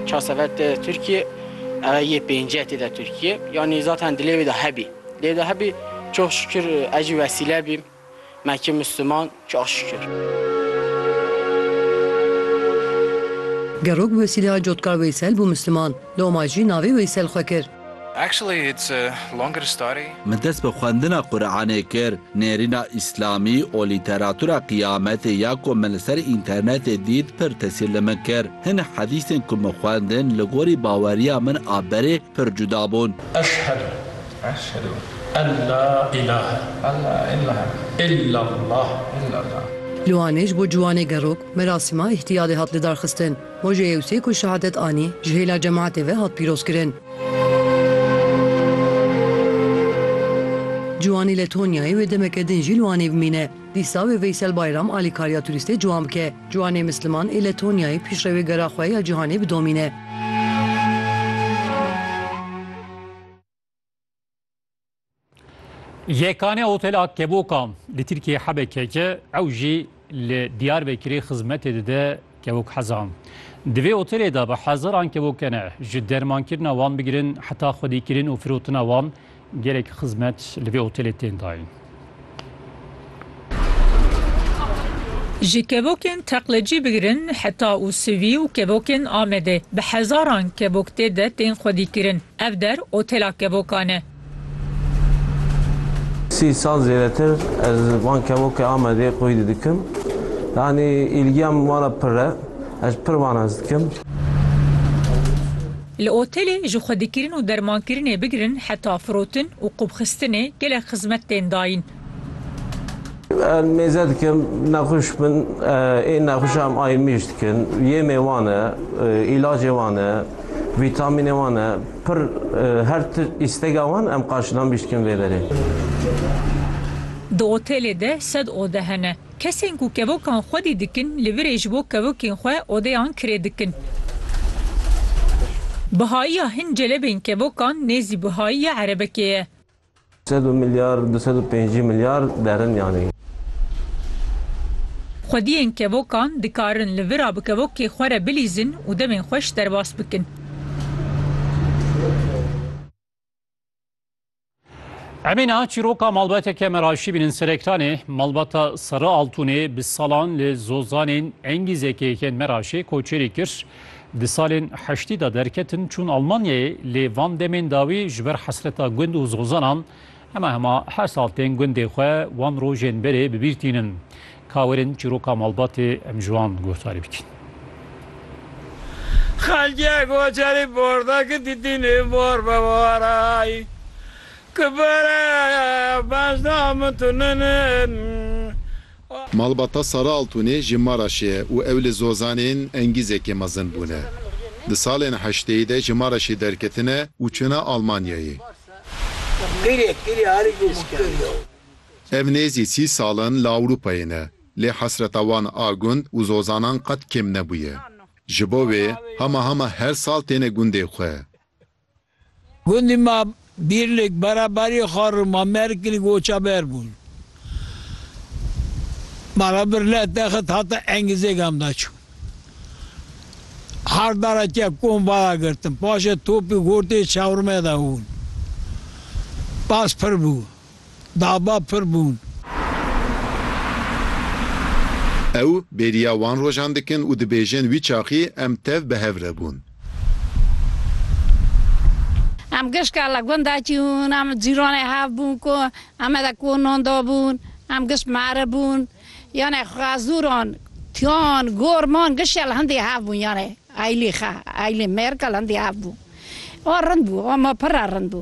Çar sefer tê Tirkiyê, eve yê pêncî ye tê de Tirkiyê. Yanî zaten dilê wê de hebî. Dilê de hebî çox şikir ez jî wesîle bîm. Me kir Misliman çox şikir. Gerok bi wesîleya Cotkar Weysel bû Misliman. Loma jî navê Weysel xwe kir. Min dest bi xwendina Quranê kir, nêrîna Îslamî û lîteratura Qiyametê ya ku min li ser înternetê dît pir tesîr li min kir. Hin hedîsên ku min xwendin li gorî baweriya min a berê pir cuda bûn. Eşhedû ellâ îlâhe illellâh. Li Wanê ji bo ciwanê gerok merasîma îhtiyalê hat lidarxistin. Rojê Yewsê ku şehadet anî, ji hêla cemaetê ve hat pîrozkirin. Ciwanî li Tonyayê wê demeke din jî li Wanê bimîne. Dîsa wê Veysel Bayram alîkariya turîstê ciwan bike. Ciwanê Misliman ê li Tonyayê pîşrewê gera xwe ya cîhanê bidomîne. Yekane Hotel a Keboka li Tirkiyeyê hebe keke ew jî li Diyarbekirê xizmetê dide kevokhezan. Di vê otelê de bi hezaran kevokene ji dermankirina wan bigirin heta xwedîkirin û firotina wan gelek xizmet li vê otelê tên dayîn. Ji kevokên teqlecî bigirin heta Usivî û kevokên Amedê bi hezaran kevok tê de tên xwedîkirin. Ev der otela kevokan e. Sî sal zêdetir ez van kevokê Amedê xwedî didikim. Yanî îlgiya min wan re pirr e. Ez pirr wan hez dikim. Li otelê ji xwedîkirin û dermankirinê bigirin heta firotin û qûbxistinê gelek xizmet tên dayîn. Em mêze dikin, nexweş bin, ê nexweşa em ayrmîj dikin, yêmê wan e, îlacê wan e, vîtamînê wan e, pir her ti îstega wan em qarşilamîj dikin vê berê. Di otelê de sed ode hene. Kesên ku kevokan xwedî dikin li virê ji bo kevokên xwe odeyan kirê dikin. Bihayiya hin celebên kevokan nêzî bihayiya erebekê ye. Sed û milyar, du sed û pêncî milyar derin yanî. Xwediyên kevokan dikarin li vira bi kevokê xwe re bilîzin û demên xweş derbas bikin. Emê niha çîroka malbateke me raşî bînin Serektanê, malbata Seri Altûnê bi salan li Zozanên engî zekeyekên me raşê koçerî kir. Di salên heştî de derketin çûn Almanyayê lê van demên dawî ji ber hesreta gund û zozanan hema hema her sal tên gundê xwe wan rojên berê bi bîr tînin. Ka werin çîroka malbatê em ji wan guhdarî bikin. Xelkê koçerî portekî dîtînê bor be warayî ki bere bejna min tu ninin. Malbata Sara Altûnê ji Maraşê ye û ew li Zozanên Engîzekê mezin bûne. Di salên heşteyî de ji Maraşê derketine û çûne Almanyayê. Ev nêzî sî sal in li Ewropayê ne, lê hesreta wan a gund û zozanan qet kêm nebûye. Ji bo wê hema hema her sal têne gundê xwe. Gundî ma Bîrlik, Beraberî, Xarû, ma Merkilik û Oçaber bûn. Ma ra bir leh texit hate Engizê gam da çû. Her dara ke kom vara girtin, paşê topî gortê çewrime de hûn. Bas pir bû. dava pir bûn. Ew bêriya wan rojan dikin û dibêjin wî çaxî em tev bi hev re bûn. Em gişka li gunda çûn, em cîranê hev bûn ku eme de konan dabûn, em giş meribûn. Yanê xwezûran, tiyan, gorman gişya li hindî hev bûn yanê aylî xe, aylî mêrka li hindî hev bû. A rind bû, a ma pir re rind bû.